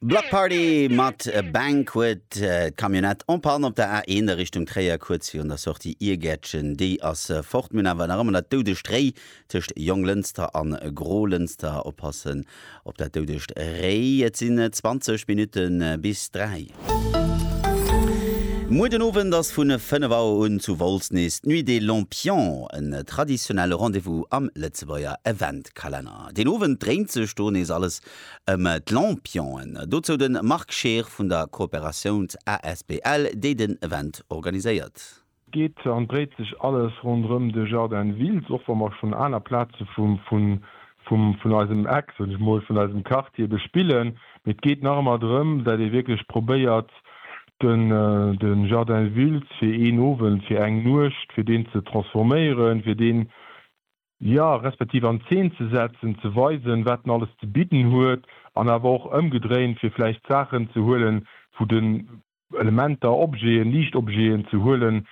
Block Party mat Banquet, d'Camionnette en panne op der A1 a Richtung Tréier, kuerz virun der Sortie Iergäertchen. Déi ass fort, mir hunn awer nach ëmmer dat doudegt Réi tëscht Jonglënster a Grolënster. Oppassen op dat doudegt Réi, et sinn 20 Minutte bis 3. Muer den Owend ass vu 5 Auer un zu Wolz nees d'Nuit des Lampions, en traditionelle Rendez-vous am Lëtzebuerger Eventkalenner. Den Owend dréint sech do nees alles ëm d'Lampionen. Dozou de Marc Scheer vun der Coopérations asbl, déi den Event organiséiert. Geet an dréit sech alles ronderëm de Jardin Wiltz, och wa mer schonn aner Plaze vun eisem Eck, soen ech mol, vun eisem Quartier bespillen. Mee et geet nach ëmmer drëm, dat ee wierklech probéiert, de Jardin Wiltz fir een Owend, fir eng Nuecht, fir deen ze transforméieren, fir deen Ja, respektiv an Zeen ze setzen, ze weisen, wat en alles ze bidden huet, an awer och ëmgedréint, fir vläicht Saachen ze huelen, wou den, Elementer, Objeten, Liichtobjeten ze huelen,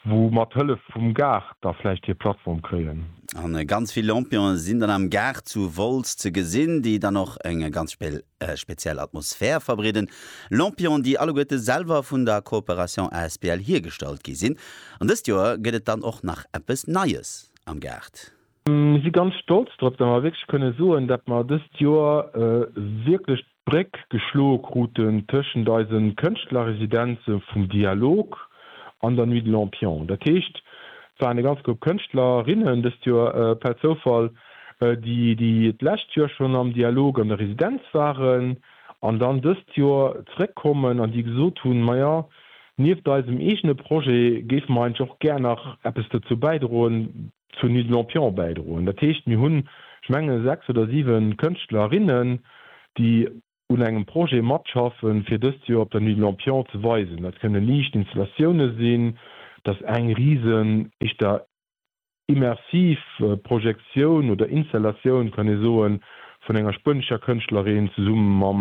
wou mat Hëllef vum Gaart da vläicht hir Plattform kréien. A ganz vill Lampionen sinn dann am Gaart zu Wolz ze gesinn, déi dann och eng ganz speziell Atmosphär verbreeden. Lampionen, déi alleguerte selwer vun der Coopération asbl hiergestallt gi sinn. An dëst Joer gëtt et dann och nach eppes Neies. am Gaart. Mir si ganz stolz drop, datt mer wierklech kënne soen, datt mer dëst Joer wierklech d'Bréck geschloe kruten tëschent eise Kënschtlerresidenze vum Dialog an der Nuit de Lampions. Dat heescht, et waren e ganz Grupp Kënschtlerinnen dëst Joer per Zoufall, déi d'lescht Joer schonn am Dialog an der Residenz waren an dann dëst Joer zeréckkommen an déi gesot hunn, maja, Nieft eisem eegene Projet géife mer eigentlech och gär nach eppes dozou bäidroen, zur Nuit de Lampions bäidroen. Dat heescht, mir hunn, ech menge sechs oder siwe Kënschtlerinnen, déi un engem Projet matschaffen, fir dëst Joer op der Nuit de Lampions ze weisen. Dat kënne Liichtinstallatioune sinn, dat ass eng risen, éischter Immersiv Projektioun oder Installatioun, kann ee soen, vun enger spuenescher Kënschtlerin zesumme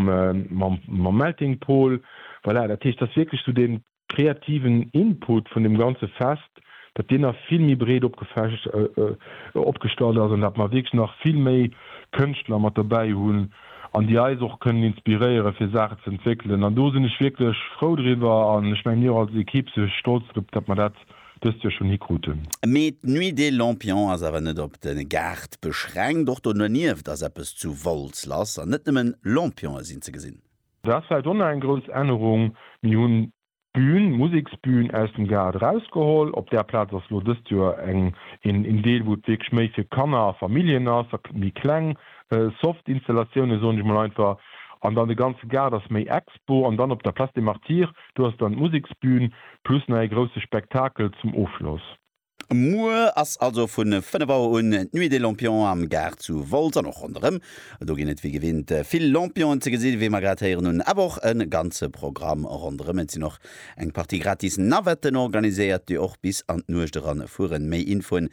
mam Melting Pol. Voilà, dat heescht, dass wierklech esou dee kreativen Input vun deem ganze Fest, datt deen nach vill méi breet opgestallt ass an datt mer wierklech nach vill méi Kënschtler mat dobäi hunn an déi eis och kënnen inspiréiere fir Saachen z'entwéckelen. An do sinn ech wierklech frou driwwer an ech mengen mir och als Equipe si stolz drop, datt mer dat dëst Joer schonn hikruten. Mee d'Nuit des Lampions ass awer net op de Gaart beschränkt, och do dernieft ass eppes zu Wolz lass an net nëmmen Lampionë sinn ze gesinn. Dat ass vläicht och nach eng grouss Ännerung, mir hunn d'Bühn, d'Museksbühn aus dem Gaart erausgeholl. Op där Plaz ass elo dëst Joer eng, een Deel wou et wierklech méi fir Kanner a Familljen ass, a méi kleng soft Installatiounen soen ech mol einfach. An dann de ganze Gaart ass méi Expo. An dann op der Place des Martyrs Do ass dann d'Museksbühn plus nach ee grousse Spektakel zum Ofschloss. Muer ass also vu 5 Auer un d'Nuit des Lampions am Gaart zu Wolz an och ronderëm. Do ginn et wéi gewinnt vill Lampionen ze gesinn, wéi mer grad héieren hunn, awer och e ganze Programm ronderëm. Et sinn och eng Partie gratis Navetten organiséiert, déi och bis an d'Nuecht eran fueren. Méi Infoen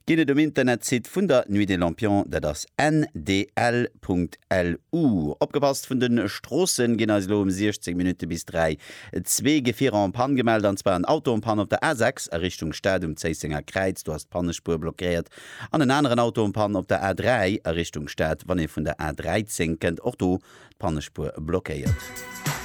Geet et um Internetsite vun der Nuit des Lampions, dat ass ndl.lu. Opgepasst, vun den Stroossen ginn eis elo um 16 Minutte bis 3 zwee Gefierer en panne gemellt, an zwar en Auto en panne op der A6 a Richtung Stad um Zéissenger Kräiz, do ass d'Pannespuer blockéiert, an en aneren Auto en panne op der A3 a Richtung Stad, wann ee vun der A13 kënnt, och do d'Pannespuer blockéiert.